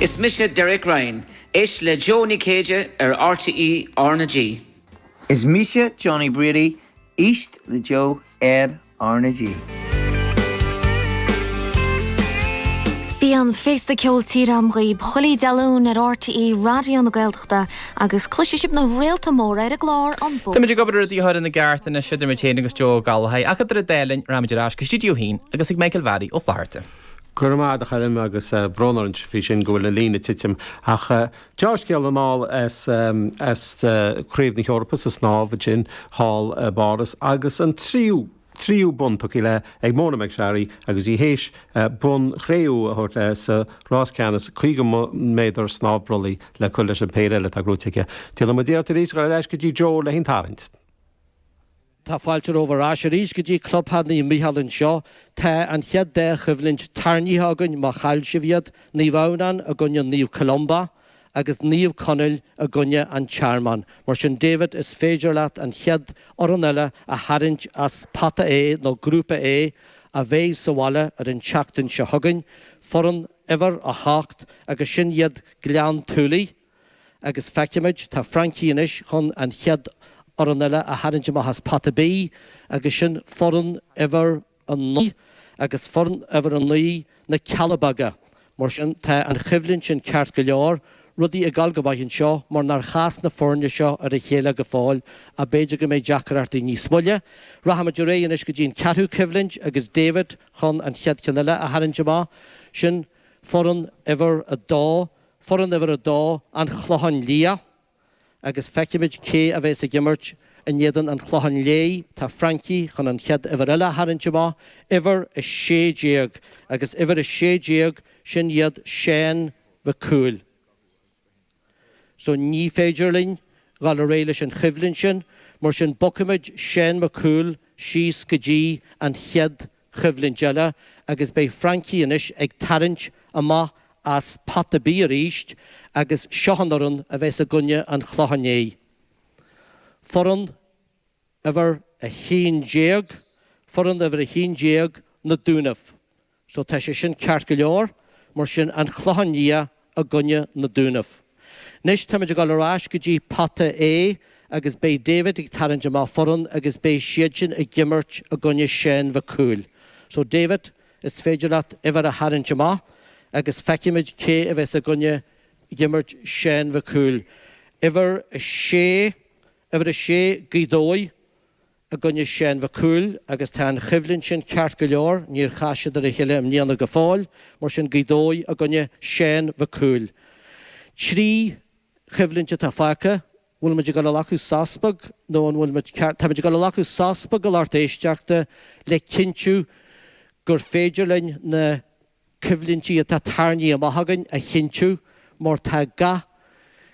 Is mise Derek Ryan. Éist le Jó Ní Chéide ar RTÉ R na G. Is mise Johnny Brady. Éist le Jó ar R na G. Bíonn an féasta ceoil tíre agam dhaoibh chuile Dé Luain ar RTÉ Raidió na Gaeltachta agus cloisfidh sibh na réalta móra ar an gclár An Bóthar. Táimid ag obair ar rudaí a chur ina gceart anois idir mé féin agus Joe Ó Gallchóir, ach idir an dá linn rachaimid ar ais go stiúideo a haon agus ag Michael Bharry Ó Flatharta. Go raibh maith agat a Choilm agus brón orainn faoi sin go bhfuil an líne ag titim. Ach deá-scéal anall as Craobh na hEorpa sa snámh ansin thall i bPáras agus an tríú, tríú bonn tugtha léi ag Mona McSharry agus í th'éis bonn chré-umha a thabhairt léi sa rás ceannais 50 méadar snámh brollaigh le cur leis an péire eile atá gnóthaithe aici. Déanfaidh muid iarracht arís dhul ar ais go dtí Joe le haghaidh an tarraingt. Tá fáilte romhaibh ar ais arís go dtí Clubtheach Naomh Mícheál anseo. Tá an chéad dá choimhlint tarraingthe againn má chaill sibh iad, Naomh Adhamhnán i gcoinne Naomh Columba agus Naomh Conaill i gcoinne An Tearmann. Mar sin David is féidir leat an chéad fhoireann eile a tharraingt as Pota A nó Grúpa A a bheidh sa bhaile ar an tseachtain seo chugainn, foireann uimhir a hocht agus sin iad Gleann tSúilí. agus feicfimid, tá Francie anois chun an chéad fhoireann eile a tharraingt amach as pota B agus sin foireann uimhir a naoi agus foireann uimhir a naoi na Cealla Beaga. Mar sin, tá an choimhlint sin ceart go leor, rudaí ag dul go maith anseo mar nár chas na foirne seo ar a chéile go fóill ach b'fhéidir go mbeidh deacrachtaí níos moille. Rachaimid ar aghaidh anois go dtí an ceathrú coimhlint agus David chun an chéad cheann eile a tharraingt amach, sin foireann uimhir a dó. Foireann uimhir a dó, An Clochán Liath, agus feicfimid cé a bheas ag imirt in éadan An Chlocháin Léith. Tá Francie chun an chéad uimhir eile a tharraingt amach, uimhir a sé déag, agus uimhir a sé déag, sin iad Seán Mhic Cumhaill. So ní féidir linn dul ar aghaidh leis an choimhlint sin, mar sin bogfaimid Seán Mac Cumhaill síos go dtí an chéad choimhlint eile agus beidh Francie anois ag tarraingt amach as pota B arís agus seo an fhoireann a bheas i gcoinne an Chlocháin Léith. Foireann uimhir a haon déag, foireann uimhir a haon déag na Dúnaibh. So tá sé sin ceart go leor, mar sin, An Clochán Liath. i gcoinne na Dúnaibh. Anois táimid ag dul ar ais go dtí pota A agus beidh David ag tarraingt amach foireann agus beidh siadsin ag imirt i gcoinne Sheáin Mhic Cumhaill. So David, is féidir leat uimhir a tharraingt amach agus feicfimid cé a bheas i gcoinne ag imirt Sheáin Mhic Cumhaill. Uimhir a sé, uimhir a sé, Gaoth Dobhair. i gcoinne Seán Mhic Cumhaill agus tá an choimhlint sin ceart go leor, níor chas siad ar a chéile i mbliana go fóill, mar sin Gaoth Dobhair i gcoinne Seán Mhic Cumhaill. Trí choimhlint atá fágtha, bhfuil muid ag dul a ghlacadh sos beag nó an bhfuil muid ceart, táimid ag dul a ghlacadh sos beag a lucht éisteachta le cinntiú gur féidir linn na. coimhlintí atá tarraingthe amach againn a chinntiú mar tá gach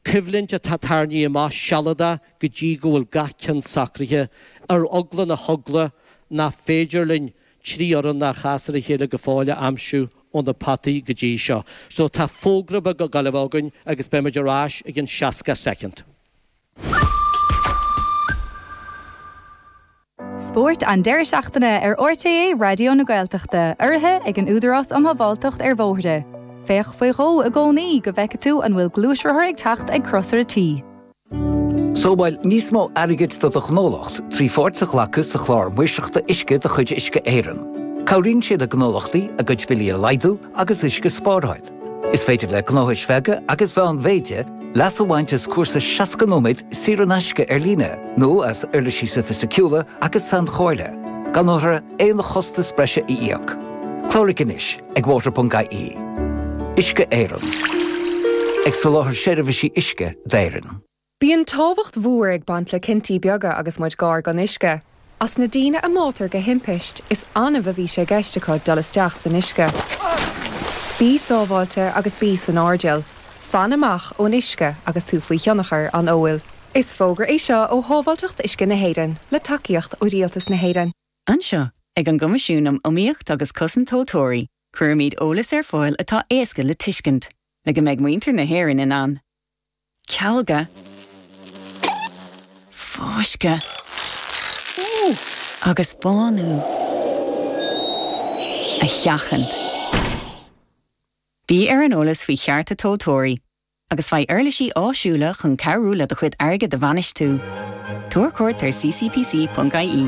coimhlint atá tarraingthe amach sealadach go dtí go bhfuil gach ceann socraithe, ar eagla na heagla nach féidir linn trí fhoireann nár chas ar a chéile go fóill a aimsiú ó na potaí go dtí seo. So tá fógra beag ag gabháil a bheith againn agus beidh muid ar ais i gceann 60 soicind. Spórt an deireadh seachtaine ar RTÉ Raidió na Gaeltachta, urraithe ag an Údarás um Shábháilteacht ar Bhóithre. Féach faoi dhó i gcónaí go bhfeicfidh tú an bhfuil gluaisrothar ag teacht ag Crosaire T. Sábháil níos mó airgid do do ghnólacht trí pháirt a ghlacadh sa Chlár Maoirseachta Uisce de chuid Uisce Éireann. Cabhraíonn sé le gnólachtaí a gcuid billí a laghdú agus uisce a spáráil. Is féidir le gnóthais bheaga agus mheánmhéide leas a bhaint as cúrsa 60 nóiméad saor in aisce ar líne nó as uirlisí sofaisticiúla agus sainchomhairle, gan orthu aon chostas breise a íoc. Cláraigh anois ag water.ie. Uisce Éireann. Ag soláthar seirbhísí uisce d'Éirinn. Bíonn tábhacht mhór ag baint le cinntí beaga agus muid gar don uisce. As na daoine a mbáitear de thimpiste, is annamh a bhí sé i gceist acu dul isteach san uisce. Bí sábháilte agus bí san airdeall. Fan amach ón uisce agus tú faoi thionchar an óil. Is fógra é seo ó Shábháilteacht Uisce na hÉireann, le tacaíocht ó Rialtas na hÉireann. Anseo, ag an gCoimisiún um Iomaíocht agus Cosaint Tomhaltóirí, cuirimid eolas ar fáil atá éasca le tuiscint, le go mbeidh muintir na hÉireann in ann cealga, fáisceadh agus bánú a sheachaint. Bí ar an eolas faoi chearta tomhaltóirí agus faigh uirlisí áisiúla chun cabhrú le do chuid airgid a bhainistiú. Tabhair cuairt ar ccpc.ie.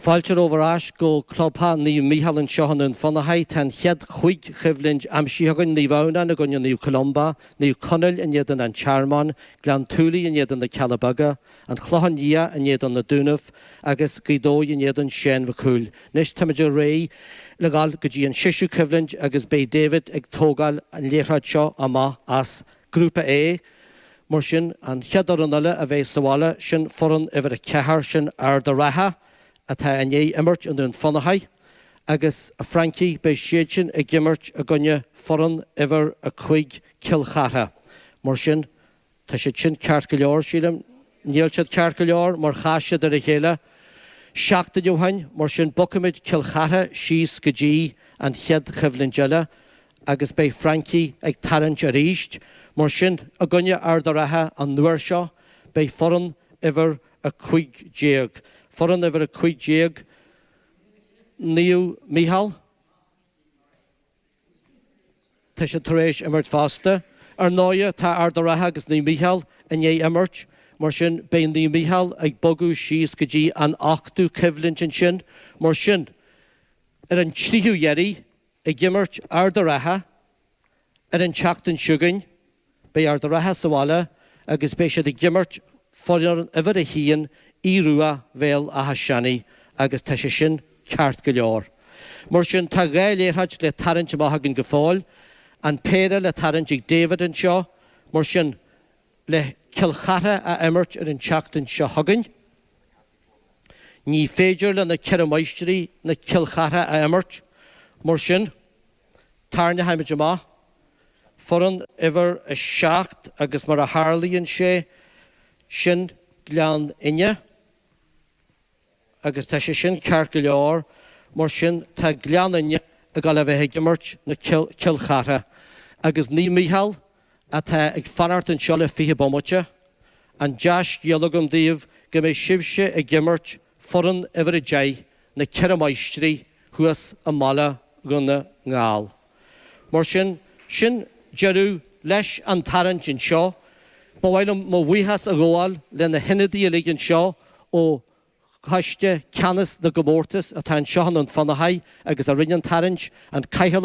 Fáilte romhaibh ar ais go clubtheach Naomh Mícheál anseo i nDún Fionnachaidh. Tá an chéad chúig choimhlint aimsithe againn, Naomh Adhamhnáin i gcoinne Naomh Columba, Naomh Conaill in éadan An Tearmann, Gleann tSúilí in éadan Na Cealla Beaga, An Clochán Liath in éadan Na Dúnaibh agus Gaoth Dobhair in éadan Seán Mhic Cumhaill. Anois táimid réidh le dhul go dtí an seisiú coimhlint agus beidh David ag tógáil an liathróid seo amach as a Grúpa A, Mar sin, an chéad fhoireann eile a bheidh sa bhaile, sin foireann uimhir a ceathair, sin Ard a' Ratha, atá i ndiaidh imirt i nDún Fionnachaidh. Agus, a Francie, beidh siadsin ag imirt i gcoinne foireann uimhir a cúig, Cill Chartha. Mar sin, tá siad sin ceart go leor, sílim. Níl siad ceart go leor, mar chas siad ar a chéile seachtain ó shoin. Mar sin, bogfaimid Cill Chartha síos go dtí an chéad choimhlint eile, agus beidh Francie ag tarraingt arís. Mar sin, i gcoinne Ard a' Ratha an uair seo, beidh foireann uimhir 15. Foireann uimhir 15 Naomh Micheál, tá siad tar éis imirt fosta. Ar ndóigh, tá Ard a' Ratha agus Naomh Micheál i ndiaidh imirt, mar sin beidh Naomh Micheál ag bogadh síos go dtí an ochtú coimhlint ansin. Mar sin, ar an tríú dheiridh, Ag imirt Ard a' Ratha ar an tseachtain seo chugainn. Beidh Ard a' Ratha sa bhaile agus beidh siad ag imirt foireann uimhir a haon Aodh Rua, Bhéal Átha Seanaidh, agus tá sé sin ceart go leor. Mar sin tá dhá liathróid le tarraingt amach againn go fóill, an péire le tarraingt ag David anseo, mar sin, le Cill Chartha a imirt ar an tseachtain seo chugainn. Ní féidir le na Ceithre Máistrí ná Cill Chartha a imirt, mar sin, tarraingeoimid amach foireann uimhir a seacht agus mar a tharlaíonn sé, sin Gleann Fhinne. agus tá sé sin ceart go leor, mar sin tá Gleann Fhinne ag dul a bheith ag imirt le Cill Chartha, agus Naomh Micheál, atá ag fanacht anseo le fiche bomaite. An dea-scéal agam daoibh go mbeidh sibhse ag imirt foireann uimhir a deich, Na Ceithre Máistrí, thuas i mBaile Dhún na nGall. Mar sin, sin deireadh leis an tarraingt anseo. Ba mhaith liom mo bhuíochas a ghabháil le na hionadaí uilig anseo ó Choiste Ceannais na gComórtas atá anseo i nDún Fionnachaidh agus a rinne an tarraingt, an Cathaoirleach,